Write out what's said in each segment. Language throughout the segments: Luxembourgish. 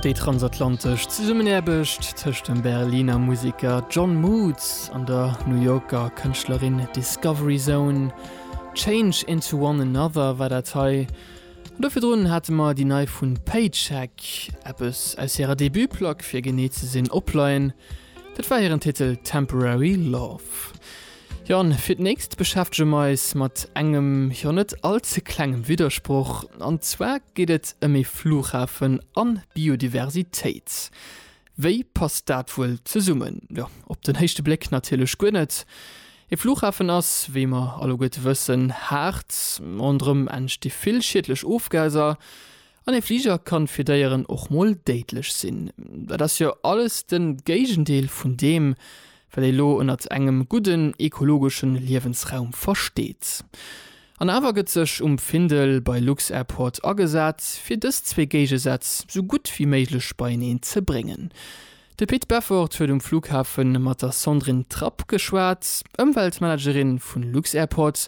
Déi transatlantesch Zesummenaarbecht tëscht dem Berliner Museker John Moots an der New Yorker Kënschtlerin Discovery Zone, Change into One Another war dat hei. An do virdrun hate mer déi nei vu Paycheck, eppes aus hirer Debut-Plack fir genee ze sinn, opleien. Dat war hiren Titel Temporary Love. Jo an fir d'nächst beschäftege mer eis mat engem jo net all ze klengem Widdersproch, an zwar geet et ëm ee Flughafen an Biodiversitéit. Wéi passt dat wuel zesummen? Jo op den héischte Bléck natierlech guer net. Ee Flughafen ass, wéi mer alleguerte wëssen, haart, ronderëm entsti vill schiedlech Ofgaser, An ee Fliger kann fir Déieren och mol déidlech sinn. Dat ass jo alles den Géigendeel vun deem wat ee lo ënnert engem gudden ekologeschen Liewensraum versteet. An awer gëtt sech um Findel bei Lux-Airport agesat fir dës zwee Géigesätz sou gutt wéi méiglech beieneen ze bréngen. De Pit Beffort huet um Flughafen mat der Sandrine Trapp geschwat, Ëmweltmanagerin vun Lux-Airport,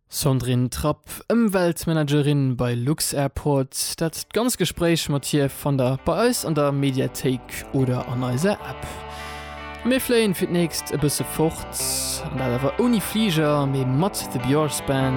Sandrine Trapp, Ëmweltmanagerin bei lux-Airport, dat d'ganzt Gespréich mat hir fannt der bei eis an der Mediathéik oder an eiser App. A mir fléien fir d'nächst e bësse fort, an dat awer ouni Fliger, mee mat The Björrsband.